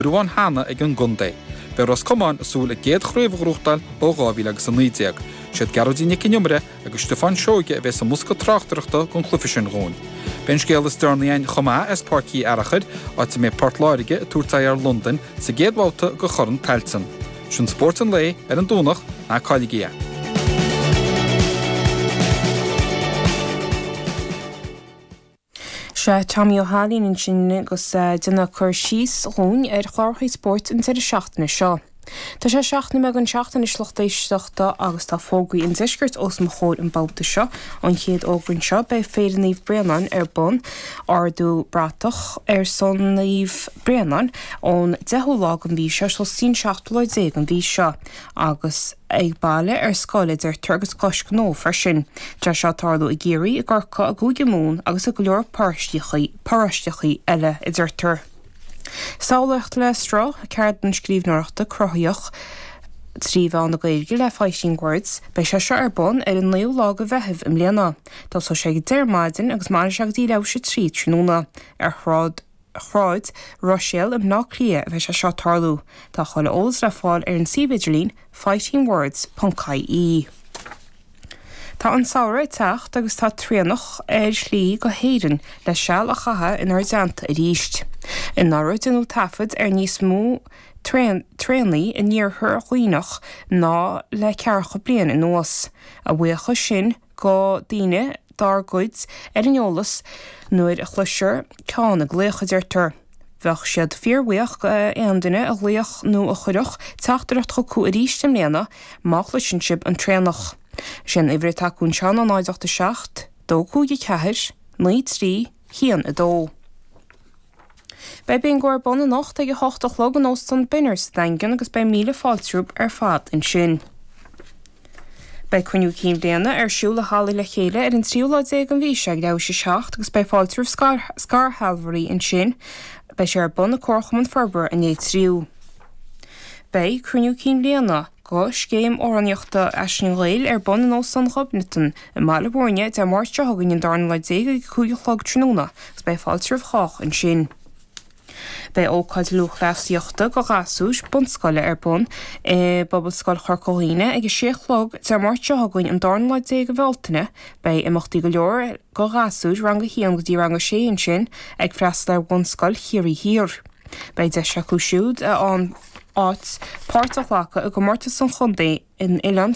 ghruán cheana ag an gcontae. Beidh Ros Comáin ag súil a gcéad chraobh a ghrúchtáil ó 2000 agus 19. Siad Gearóidín Nic an Iomaire agus Stiofán Seoige a bheidh sa mbosca tráchtaireachta gon chluiche sin dhúinn. Beidh an scéal is deireanaí aghainn chomh maith as Páirc Uí Fhearchair, áit a mbeidh Port Láirge ag tabhairt aghaidh ar Londain sa gcéad bhabhta go Chorn Tailteann. Sin spórt an lae ar an Domhnach, ná cailligí é. Sea Tommy Ó hAilín ansin agus é ag déanamh cur síos dhúinn ar chlárachaí spóirt an deireadh seachtaine seo. Tá sé seacht nóiméad théis a seacht anois a lucht éisteachta agus tá fógraí an deiscirt os mo chomhair an babhta seo. An chéad fhógra anseo, beidh Féile Naomh Bréannáin ar bun, ardú bratach ar son Naomh Bréannáin, ón deichiú lá den mhí seo, sos an seachtú lá déag an mhí seo agus. ag baile, ar scoil, a deirtear agus cois gnó freisin. Tá sé ag tarlú i gCiarraí, i gCorcaigh, i gCúige Mumhan agus i go leor paróisteachaí eile, a deirtear. Samhlaíocht le sruth, ceardlann scríbhneoireachta cruthaitheach trí mheán na Gaeilge le Fighting Words. Beidh sé seo ar bun ar an 9ú lá de Mheitheamh i mbliana. Tosóidh sé ag 10 ar maidin agus mairfidh sé go dtí leathuair théis a 3 tráthnóna. Ar Shráid. Shráid Ruiséal i mBleá Cliath a bheidh sé seo ag tarlú. Tá chuile eolas le fáil ar an suíomh idirlín fightingwords ponc ie. Tá an Samhradh ag teacht agus tá traonach ar a shlí go hÉirinn le seal a chaitheamh inár dteannta arís. Anuraidh deineadh taifead ar níos mó traonaigh in iarthar Dhuibhneach ná le ceathracha bliain anuas, a bhuíochas sin go dhaoine dár gcuir ar an eolas nuair a chloisfear ceann ag glaoch a deirtear. Bheadh siad fíorbhuíoch go aon duine a ghlaofadh nó a chuirfeadh teachtaireacht chucu arís i mbliana má chloiseann sibh an traonach. Is é an uimhir atá acu anseo ná 087 254 93 1 2. Beidh bingo ar bun anocht ag a hocht a chlog in Óstán Benner sa Daingean agus beidh míle fáilte romhaibh ar fad ansin. Beidh Cruinniú Cinn Bliana ar siúl i Halla Le Chéile ar an tríú lá déag an mhí seo ag leathuair théis a 7 agus beidh fáilte roimh scairshealbhoirí ansin. Beidh sé ar bun i Comharchumann Forbartha an Leith Triúigh. Beidh Cruinniú Cinn Bliana. go scéim amhránaíochta Aisling Gheal ar bun in Óstán Ghobnatan i mBaile Mhúirne Dé Máirt seo chugainn an darna lá déag ag a cúig a chlog tráthnóna agus beidh fáilte roimh chách ansin. Beidh ócáid lúthchleasaíochta do ghasúir bunscoile ar bun i bPobalscoil Chorca Dhuibhne ag a sé a chlog Dé Máirt seo chugainn an darna lá déag de Bhealtaine. Beidh imeachtaí go leor do ghasúir rang a haon go dtí rang a sé ansin ag freastal ar Bhunscoil Chiarraí Thiar. Beidh deis acu siúd a bhuann áit, páirt a ghlacadh i gcomórtas an chontae in Oileán